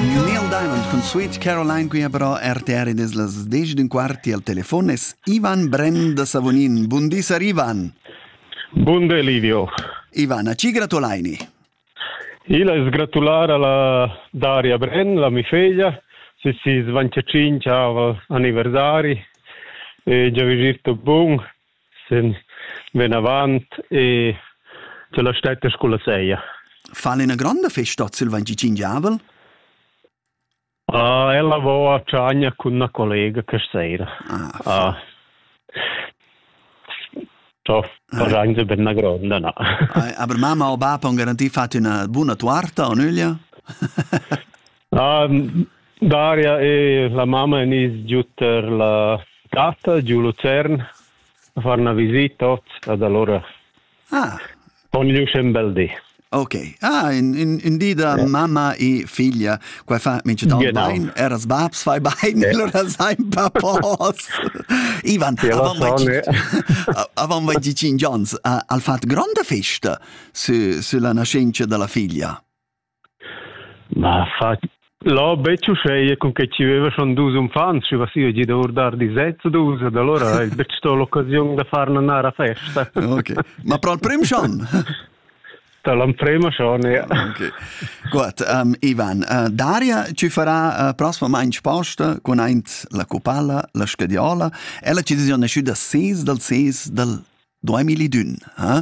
New Neil Diamond cun Sweet Caroline qui ha però RTR ed es las 10 d'un quart e al telefon es Ivan Bren da Savonin. Bun di, sar Ivan. Bun di, Livio. Ivan, a ci gratulaini? Il es gratular alla Daria Bren, la mi figlia, se si svancia cinci aniversari, e già virto bun, sin vinavant e la stetta sculla seia. Fa ina grande festa sul Vengi Gingiavel? Ah, ella vo a Tschagna con una collega che sera. Ah, ah. So, faranze per una gronda, no. Aber Mama o Baba han garantit fatto una buona torta o nüglia? Daria e la mamma en is giut per la gatta giu Lucern a far una visita tots ad allora. Ah. Con gli un bel di. Ok. Ah, in, in, in di da yeah. mamma e figlia, qua fa minch'utan genau. bain, eras babs fai bain, yeah. allora sai papos. Ivan, avant avant vai dit Johns, al fat gronda festa su, su la nascenza della figlia. Na, fa Lò betg uscheia cun che chi veva schon dus uffants, schi vasiva gida our dar disets u dus, ed allura ha el betg sto l'occasiun da far nanar a festa. Ok, ma pro al prim schon? Da l'emprema schon, ja. Okay. Gut, um, Ivan, uh, Daria ci farà uh, prossimament sposta con aint la copalla, la scadiola, e la decisione è uscida 6 dal 6 dal Duemi li dün, eh?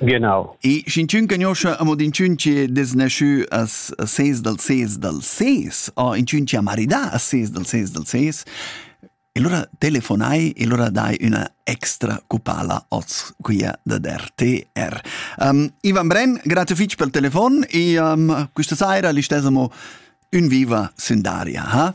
Genau. E sch'in tschun cagnoscha amo din tschun che desnasciù as a ses dal ses dal ses, o in tschun che ha maridà a ses dal ses dal ses, e allora telefonai e allora dai üna extra cupala oz quia da RTR. Um, Ivan Brenn, grazie fitch pel telefon e um, questa saira listesamo un viva Sundaria, ha?